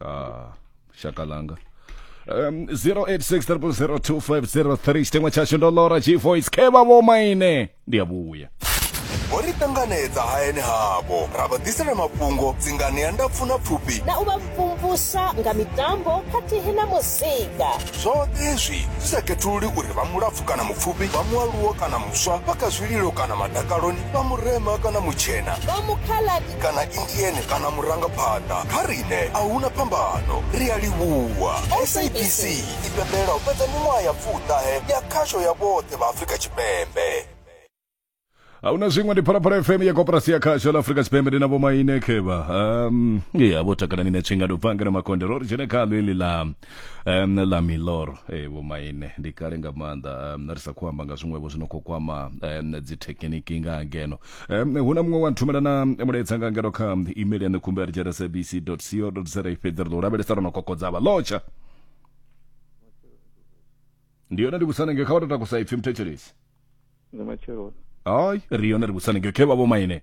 ah shaka langa um 0860002503 chitengwa chashu ndo lora g voice khe vha vho maine ndi a vhuya ho ri ṱanganedza hayani havho ra vha ḓisela mafhungo dzingani ya ndapfu na pfufhi na u vha mvumvusa nga mitambo khathihi na muzika zwoṱhe izwi zwi sa khethululi uri vha mulapfu kana mupfufhi vha mualuwo kana muswa vha kha zwililo kana madakaloni vha murema kana mutshena vha mukhala kana indieni kana murangaphanḓa kha riṋe a huna phambano ri a livhuwa sabc i pembela u fhedza miṅwaha ya pfuṱahe ya khasho ya vhoṱhe vha afrika tshipembe ahuna zwiṅwe ndi phalaphala fm ya koporasi ya khasho ḽa afrika tshipembe ndi na vhomaine khevha um ya vho takalani ne tshingado bvangana makonde ro ri dzhene khalo ili ḽa um, ḽa milor e vho maine ndi kale nga maanḓa um, ri sa khou amba nga zwiṅwevho zwi no khou kwama um, dzithekhiniki nga ngeno um, hu na muṅwe wa nthumela na mulaedza nga ngeno kha email ya nekhumba ya rejera sabc co za fhedzi ri ḓo lavhelesa ro no kokodza vha lotsha ndi yone ndi vhusanenge kha vha to takusa ipfhi muthetshelesi ndi matsheloni hayi ri yone ri vhusanenge khe vha vho maine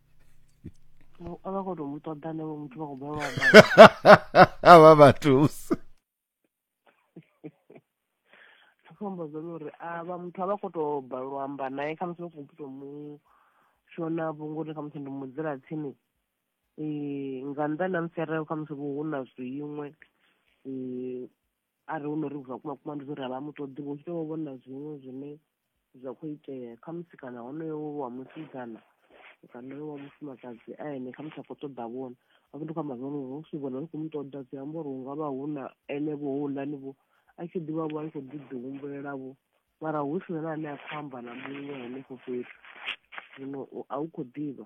a vha khou tou mu ṱoḓa navho muthu vha khou balelwa u amba. vha vha thusa Ndi khou amba zwone uri a vha muthu a vha khou tou balelwa u amba naye kha musi vha khou tou mu shona vho ngori kha musi ndi mu dzula tsini Eh, nga nnḓa na musi arali kha musi vho hu na zwiṅwe Eh, arali hu no ri vha kuma kuma ndi zwo ri a vha mu ṱoḓi vho tshi tou vhona zwiṅwe zwine zwa khou itea kha musi kana honoyo wa musidzana kana wa mufumakadzi a ene kha musi a khou ṱoḓa vhona hafho ndi khou amba zwone uri si vhona ri khou mu ṱoḓa zwi amba uri hu nga vha hu na ene vho houḽani vho a tshi ḓivha vho a tshi khou ḓi ḓi humbulela vho mara hu si na ane a khou amba na muṅwe henefho fhethu zwino a u khou ḓivha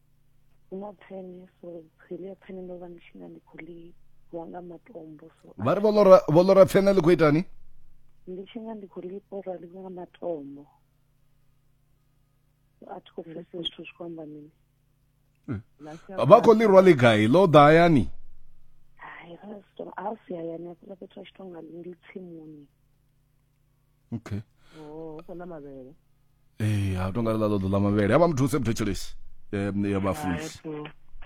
vha ri vho ḽora pfene ḽi khou itani ndi tshi nga ndi khou ḽipora ḽi nga matombo a thi khou pfesa zwithu zwi khou amba mini hmm. vha khou ḽi rwa ḽi gai ḽo ḓa hayani hai a si hayani a fhethu a tshi tonga ndi tsimuni okay oh hu khou ḽa mavhele ee ha tonga ḽa ḽo ḓo ḽa mavhele a vha muthu septo tshelesi um ya vhafunzi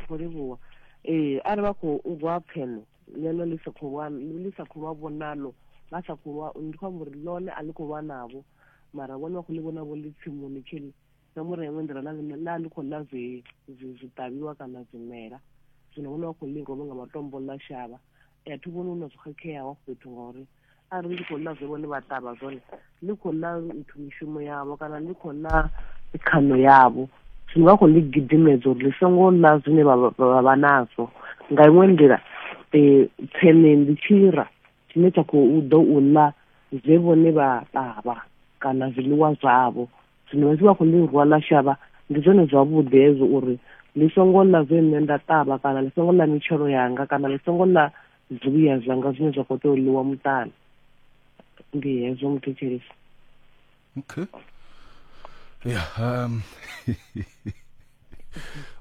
khou livhuwa ee arali vha khou rwa pfeno ḽeḽo ḽi sa khou lwa ḽi sa khou lwa vhonalo vha sa khou lwa ndi khou amba uri ḽone a ḽi khou lwa navho mara vhone vha khou ḽi vhona vho ḽi tsimuni tshili na muri ya iṅwe nḓila na ḽi khou ḽa zwiṱavhiwa kana zwimela zwino vhone vha khou ḽi rwa nga matombo ḽa shavha a thi vhoni hu na zwo khakheaho fhethu ngauri arali ndi khou ḽa zwe vhone vha ṱavha zwone ndi khou ḽa nthu mishumo yavho kana ndi khou ḽa khano yavho zwino vha khou ḽi gidimedza uri ḽi songo ḽa zwine vha vha nazwo nga iṅwe nḓila um tsene ndi tshira tshine tsha khou ḓo u ḽa zwe vhone vha ṱavha kana zwiḽiwa zwavho zwino vha tshi vha khou ḽi rwa ḽa shavha ndi zwone zwavhuḓi hezwo uri ḽi songo ḽa zwe nṋe nda ṱavha kana ḽi songo ḽa mitshelo yanga kana ḽi songo ḽa zwibuya zwanga zwine zwa khou tea u ḽiwa muṱani ndi hezwo muthetshelisi okay ya um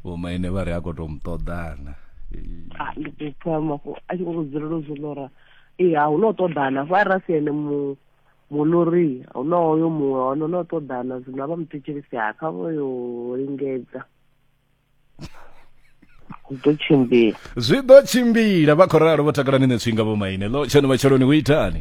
vhomaine vha ri a khou tou mu ṱoḓana ah, ndi khou pfa mafhu a tshi khou dzulela u zwi lora ee a hu no ṱoḓana fo arali a si ene mu Muluri, hu na hoyo muṅwe hone no ṱoḓana zwino vha muthetshelisi ha kha vho yo lingedza hu ḓo tshimbila zwi ḓo tshimbila vha khou ralo vho takalani netswinga vho maine ḽo tshono vha tsheloni hu itani